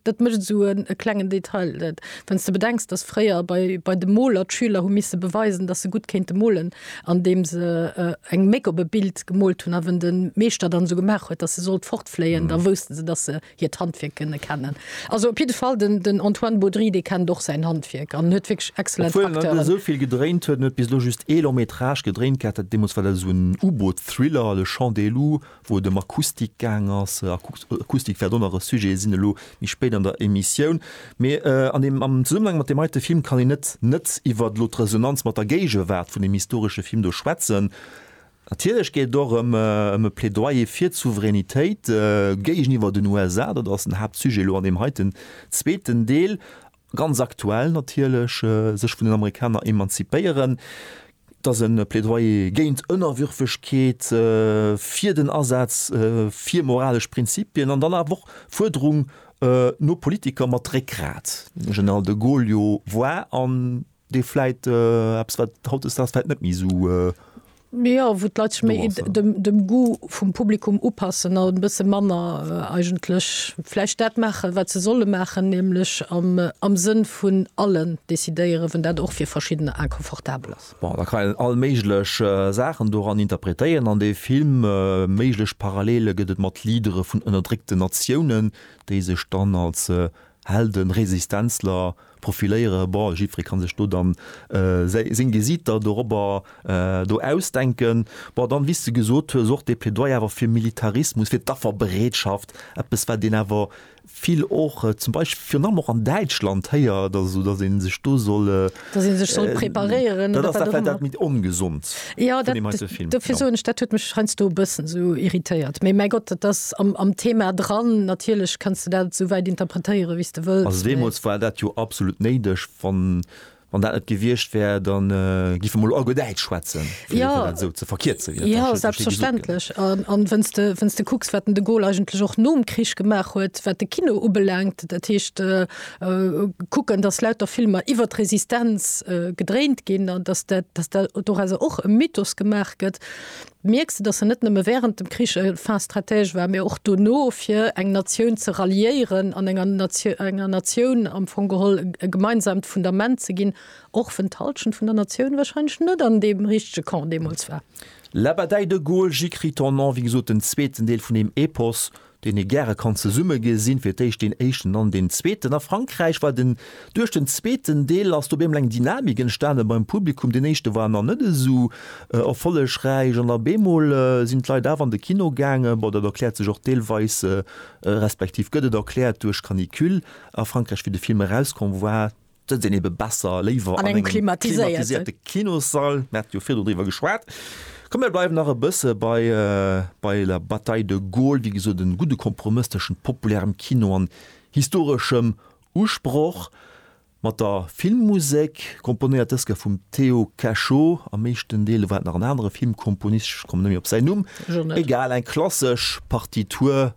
Dat mécht et esou e klengen Detail, wann s de bedenks, datt fréier bei de Moler d'Schüler hu misse beweisen, datt se gutt kéinte molen, andeem se eng Méck op e Bild gemoolt hunn. A wann de Meeschter dann esou gemaach huet, datt se sollt fortfléien, da wousste se, datt se hiert Handwierk kënne kennen. Also op jidde Fall, den Antoine Baudry, dee kennt och säin Handwierk an huet wierklech excellent Acteuren. Obwuel en net esou vill gedréint huet, en huet bis elo just ee Long-métrage gedréint gehat, dat deemools war dat esou en U-Boot-Thriller, Le Chant des Loups, wou et ëm Akustik gaang ass, Akustik wäert och nach e Sujet sinn elo méi spéit an der Emissioun, mee an deem am Zesummenhang mat deem heite Film kann een net net iwwert elo d'Resonanz mat der Géigewaart vun deem historesche Film do schwätzen. Natierlech geet et och ëm ëm e Plädoyer fir d'Souveränitéit géigeniwwer den USA, dat ass den Haaptsujet elo an deem heiten zweeten Deel. ganz aktuell natierlech, sech vun den Amerikaner emanzipéieren, dass e Plädoyer géint Ënnerwürfegkeet, fir den Asaz fir moralesch Prinzipien an dann awer och d'Fuerderung no Politiker mat Réckgrat, den General de Gaulle jo war an dee vläit äh, eppes wat hautdesdaags vläit net méi sou äh, Ja, wo d'Leit sech méi Do ass er. dem, dem Goût vum Publikum upassen a e bësse manner äh, eigentlech vläicht dat maache wat se solle maachen, nämlech am, äh, am Sënn vun allen decidéieren, wenn dat och fir verschiddener inconfortabel ass. Bon, da kann een all méiglech äh, Saachen doran interpretéieren an dee Film. Äh, méiglech Parallele gëtt et mat Leadere vun ënnerdréckten Natiounen, déi sech dann als äh, Helden, Resistenzler, Profiléiere, bon jiddferee kann sech do dann seng Gesiiter dorobber do ausdenken. Bon dann, wéi s de gesot hues, och dee Plädoyer awer fir Militarismus, fir d'Afferbereetschaft, eppes wat een awer vill och zum Beispill virun allem och an Däitschland héiert, also datt ee sech do soll, Datt ee sech soll preparéieren oder wat och ëmmer. Dat ass dat, wat dat ongesond. Ja, dat, dofir soen ech, dat huet mech heiansdo e bëssen esou irritéiert. Mee mäi Gott, dat ass am, am Thema dran. Natierlech kanns de dat esouwäit interpretéieren, wéi s de wëlls. Also deemools war dat jo absolut néideg. Wann, wann dat net gewiescht wär, dann géife mer elo all guer Däitsch schwätzen, fir dat dann esou ze verkierzen, wéi dat dann schliisslech esou gesot gëtt. Ja, selbstverständlech. An, an wann s de, wann s de kucks, wat den de Gaulle eigentlech och nom Krich gemaach huet, wat de Kino ubelaangt, dat heescht, kucken, dass lauter Filmer iwwer d'Resistenz gedréint ginn an dass dat, dass dat dorauser och e Mythos gemaach gëtt, mierks de, dass en net nëmme während dem Krich e Fin stratège war, mee och dono, fir eng Natioun ze ralliéieren an enger Natioun, enger Natioun am Fong geholl e gemeinsamt Fundament ze ginn, och wenn d'Halschent vun der Natioun wahrscheinlech net an deem richtege Camp deemools war. La bataille de Gaulle, J'écris ton nom, wéi gesot, den zweeten Deel vun deem Epos, deen ee gäre kann zesumme gesinn, fir d'éischt deen éischten, dann deen zweeten. A Frankräich war den, duerch den zweeten Deel ass do op eemol eng Dynamik entstanen beim Publikum. Deen éischte war nach net esou erfollegräich an op eemol sinn d'Leit awer an de Kino gaangen. Bon, dat erkläert sech och deelweis, respektiv gëtt et erkläert, duerch Canicule a Frankräich, wéi de Film erauskomm war. D'Sëtz sinn ebe besser, léiwer an engem klimatiséierte Kinossall, mir hate jo virdru driwwer geschwat. Komm mir bleiwen nach e bësse bei bei La Bataille de Gaulle, wéi gesot e gudde Kompromëss tëschent populärem Kino an historeschem Usproch. Mat der Filmmusek, komponéiert dës ka vum Théo Cachot, am meeschten Deel war et nach en anere Filmkomponist, ech komme net méi op säin Numm, egal, eng klassesch Partitur